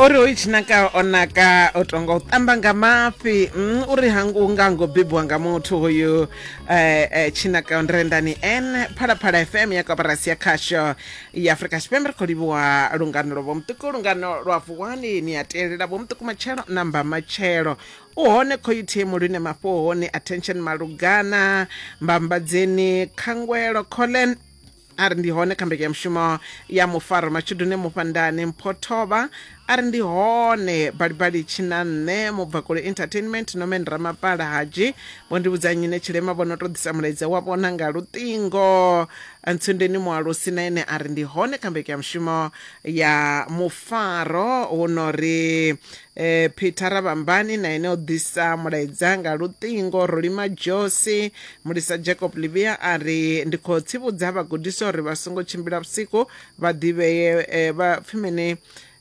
uri hoyu tshinaka o naka o tonga u tamba nga mafhi mm, uri hangu nga ngo bebiwa nga muthu hoyu eh, eh, tshinaka ndrendani n phalaphala fm ya koporasi ya khasho ya afrika tshipembe ri khou livhuwa lungano lwa vhomuṱuku lungano lwa vuwani ni a telela vhomuṱuku matshelo na mba matshelo u hone khoyuthimu lune mafhohoni attention malugana mbambadzeni khangwelo collen a ri ndi hone kha mbekanyamushumo ya mufaro matshudune mufhandane mpho thovha a ri ndi hone balibali tshina nṋe mubvakule entertainment nomen ramapala hadzhi vho ndi vhudza nyine tshilema vho no to ḓisa mulaedza wa vhona nga luṱingo ntsundeni mualusi na ene a ri ndi hone kha mbekanyamushumo ya mufaro hu no ri E, Peter Ravhambani na ene o ḓisa mulaedza nga luṱingo. Rolima Josi, mulisa Jacob Livia a ri, Ndi khou tsivhudza vhagudiswa uri vha songo tshimbila vhusiku vha ḓivhee e, vha pfi mini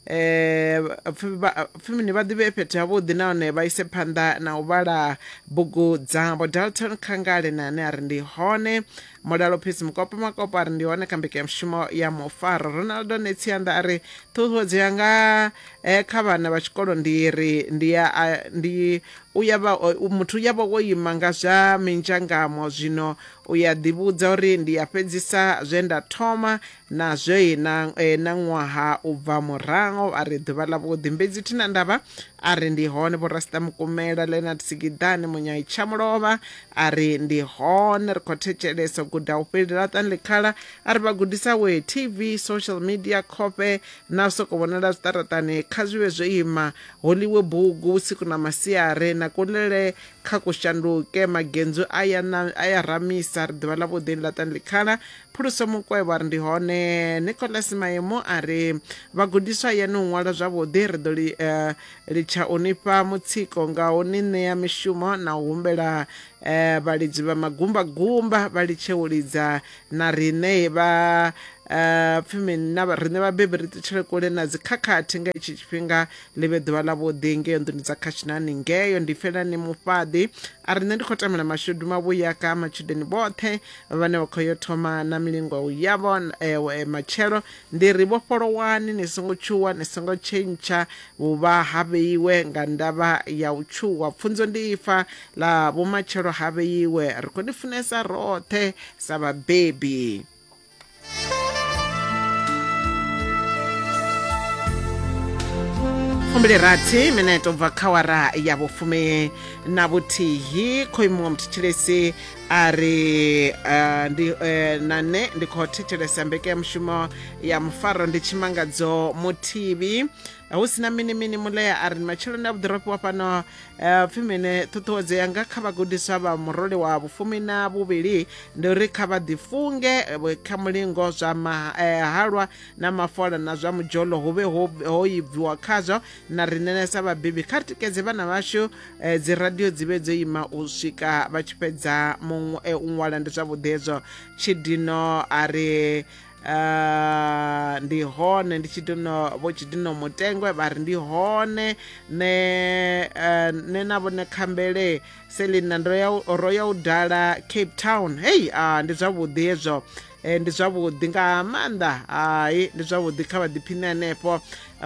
e, pfi vha- pfi mini vha ḓivhee fhethu havhuḓi nahone vha ise phanḓa na u vhala bugu dzavho. Dalton Khangale na ane a ri ndi hone. Mulalo Peace Mukopo Makopo a ri ndi hone kha mbekanyamushumo ya Mufaro. Ronaldo Netsianda a ri, Ṱhuṱhuwedzo yanga Kha vhana vha tshikolo ndi ri ndi ya a, ndi u ya vha, muthu u ya vha wo ima nga zwa minzhangamo, zwino u ya ḓivhudza uri ndi ya fhedzisa zwe nda thoma na zwoi na, na ṅwaha u bva muraho. A ri ḓuvha ḽavhuḓi Mbedzi Thina Ndaba a ri ndi hone, Vho Rasita Mukumela, Leonard Sigiḓani, Munyai Tshamulovha a ri ndi hone, ri khou thetshelesa, u guda hu fheli laṱani ḽikhala a ri vhagudisa wee TV, social media, khofhe na u soko vhonala zwiṱaraṱani kha zwi vhe zwo ima holiwe bugu vhusiku na masiare na kulele kha kushanduke magenzu a ya na- a ya ramisa ri ḓivha ḽa vhuḓi ni laṱani ḽikhala phuluso mukwevho a ri ndi hone nicolas maemu a ri vhagudiswa ya ni u ṅwala zwavhuḓi ri ḓo li- eh, litsha u nifha mutsiko nga u ni ṋea mishumo na u humbela eh, vhalidzi vha magumbagumba vha litshe u lidza na riṋe vha uh, pfi mini na vha- riṋe vhabebi ri ṱutshele kule na dzikhakhathi nga itshi tshifhinga ḽi vhe ḓuvha ḽa vhuḓi ngeyo nḓuni dza khashinani ngeyo ndi felani mufhaḓi a riṋe ndi khou tamela mashudu mavhuya ka matshudeni vhoṱhe vhane vha khou yo thoma na milingo yavho eh, eh, matshelo ndi ri vhofholowani ni songo tshuwa ni songo tshentsha vhuvha ha vheiwe nga ndavha ya u tshuwa pfunzo ndi ifa Ḽa vhumatshelo ha vheiwe, ri khou ni funesa roṱhe sa vhabebi. fumbili rathi mineto bva kha wara ya vhufumi na vhuthihi khou imuwa muthetshelesi a ri uh, ndi uh, na nṋe ndi khou thetshelesa mbekanyamushumo ya mufaro ndi tshimangadzo muthivhi eh, hu sina mini mini mulea a ri ni matsheloni a vhuḓiropi wa fhano eh, pfi mene ṱhuṱhuwedzo yanga kha vhagudiswa vha murole wa vhufumi na vhuvhili ndi uri kha vha ḓifunge eh, kha mulingo zwa mahalwa na mafola na zwa mudzholo hu vhe ho ibviwa khazwo na ri nenesa vhabebi kha ri tikedze vhana vhashu dzi radio dzi vhe dzo ima u swika vha tshi fhedza u ṅwala ndi zwavhuḓi hezwo tshidino a ri Uh, ndi hone ndi tshidino vho tshidino mutengwe vha ri ndi hone ne uh, ne na vhone khambele selina ro ya u dala cape town hei uh, ndi zwavhuḓi hezwo eh, ndi zwavhuḓi nga maanḓa hai ndi zwavhuḓi kha vhaḓiphine hanefho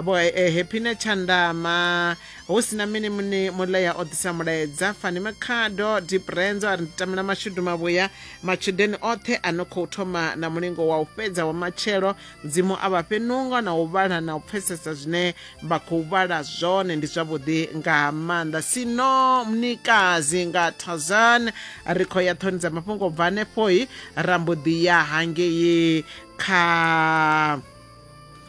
vho eh, happine tshandama hu si na mini muni mulea o ḓisa mulaedza fani makhado diprenzo a ri ndi tamela mashudu mavhuya Matshudeni oṱhe a no khou thoma na mulingo wa u fhedza wa matshelo, Mudzimu a vha fhe nungo na u vhala na u pfesesa zwine vha khou vhala zwone. Ndi zwavhuḓi nga maanḓa. Sino Mnikazi nga Tarzan. Ri khou ya ṱhoni dza mafhungo bva hanefho-i ra mbo ḓi ya hangei kha.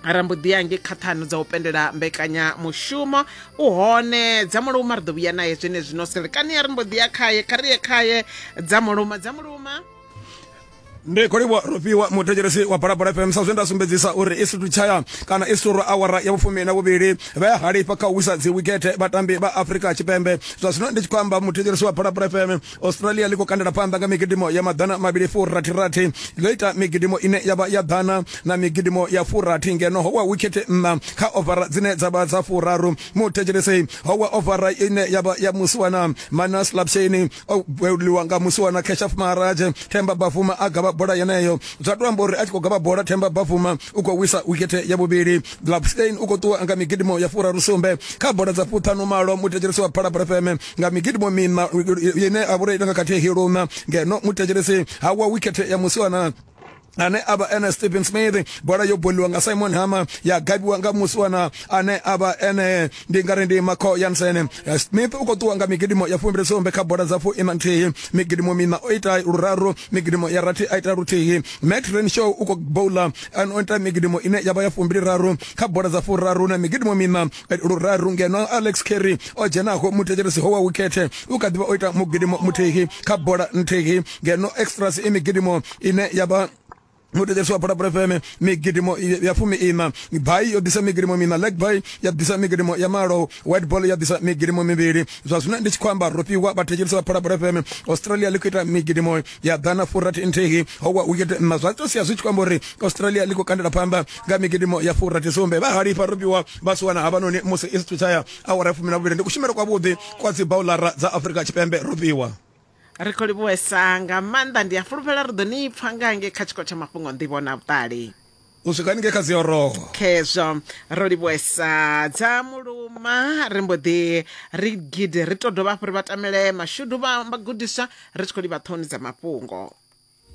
ra mbo ḓi yange kha ṱhanu dza u pendela mbekanyamushumo u hone dza muluma ri ḓo vhuya naye zwene zwino selekani ya ri mbo ḓi ya khaye kha ri ye khaye dza muluma dza muluma ndi khou livhuwa rofhiwa muthetshelesi wa balabala fm sa zwe nda sumbedzisa uri i situ tshaya kana i suru awara ya vhufumi na vhuvhili vha ya halifha kha u wisa dzi wikethe vhatambi vha afrika tshipembe zwa zwino ndi tshi khou amba muthetshelesi wa balabala fm australia ḽi khou kandela phanḓa nga migidimo ya maḓana mavhili furathirathi ḽo ita migidimo ine ya vha ya ḓana na migidimo ya furathi ngeno ho wa wikhethe nṋa kha ovara dzine dza vha dza furaru muthetshelesi ho wa ovara ine ya vha ya musiwana manas lapsheni o beuliwa nga musiwana keshaf maharaje themba bafuma a gavha bola yeneyo zwa to amba uri a tshi khou gavha bola themba bafuma u khou wisa wikhethe ya vhuvhili lapsheni u khou ṱuwa nga migidimo ya furaru sumbe kha bola dza fuṱhanu malo muthetshelesi wa phalabra feme nga migidimo mina ine a vhura ita nga khathihi luna ngeno muthetshelesi ha wa wikhethe ya musiwana ane a vha ene stephen smith bola yo boliwa nga simon hama ya gabiwa nga musiwana ane a vha ene ndi ngari ndi maco yansen eh, smith u khou ṱuwa nga migidimo ya fumbili sumbe kha bola dza fu ina nthihi migidimo mina o ita luraru migidimo ya rathi a ita luthihi matt renshaw u khou bowla o ita migidimo ine ya vha ya fumbili raru kha bola dza furaru na migidimo mina luraru ngeno alex carry o dzhenaho muthetshelesi ho wa wikhethe u kha ḓivha o ita mugidimo muthihi kha bola nthihi ngeno extras i migidimo ine ya vha mutetshesi wa phalaphala fm migidimo ya fumi ina bai yo ḓisa migidimo mina leg bai ya ḓisa migidimo ya malo white ball ya ḓisa migidimo mivhili zwa zwino ndi tshi khou amba ro fhiwa vhathetshelesi vha phalaphala fm australia ḽi khou ita migidimo ya ḓana furathi nthihi howa hu tshite nna zwa tou sia zwi tshi khou amba uri australia ḽi khou kandela phanḓa nga migidimo ya furathi sumbe vha halifha robiwa vha si wana havhanoni musi i sithu tshaya awara ya fumi na vhuvhili ndi kushumele kwavhuḓi kwa dzi baulara dza afurika tshipembe robiwa ri khou livhuwesa nga maanḓa ndi a fulufhela ri ḓo ni pfha nga nge kha tshiko tsha mafhungo nḓivho na vhuṱali u swika haningei kha dzioroho khezwo ro livhuesa dza muluma ri mbo ḓi ri gidi ri to dovha hafhu ri vha tamele mashudu vha vhagudiswa ri tshi khou livha ṱhoni dza mafhungo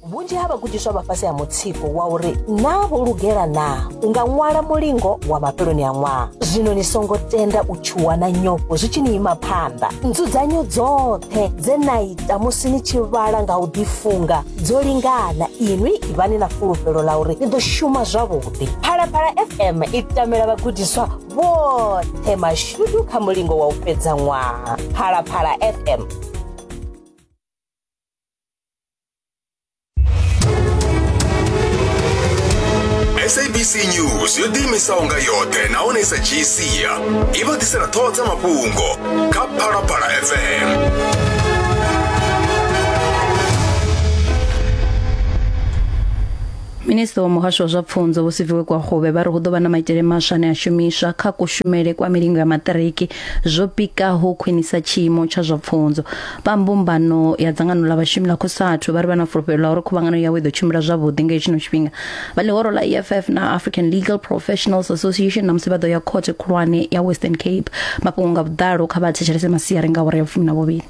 vhunzhi ha vhagudiswa vha fhasi ha mutsiko wa uri naa vho lugela naa u nga ṅwala mulingo wa mafheloni a ṅwaha zwino ni songo tenda u tshuwa na nyofho zwi tshi ni ima phanḓa nzudzanyo dzoṱhe dze na ita musi ni tshi vhala nga u ḓifunga dzo lingana inwi ivhani na fulufhelo ḽa uri ni ḓo shuma zwavhuḓi phalaphala fm i tamela vhagudiswa vhoṱhe mashudu kha mulingo wa u fhedza ṅwaha phalaphala fm sabc news yo ḓiimisaho nga yoṱhe nahone i sa dzhii sia i vha ḓisela ṱhoho dza mafhungo kha phalaphala fm minista wa muhasho wa zwa pfunzo vho siviwe kwa huvhe vha ri hu ḓo vha na maitele maswa ane a shumiswa kha kushumele kwa milingo ya maṱiriki zwo pikaho khwinisa tshiimo tsha zwa pfunzo vha mbumbano ya dzangano ḽa vhashumi ḽa khosathu vha ri vha na fulufhelo ḽa uri khuvhangano yawe i ḓo tshimbila zwavhuḓi nga hetshino tshifhinga vha ḽihoro ḽa eff na african legal professionals association na musi vha ḓo ya khothe khulwane ya western cape mafhungo nga vhuḓalo kha vha thetshelese masiari nga awara ya vhufumi na vhuvhili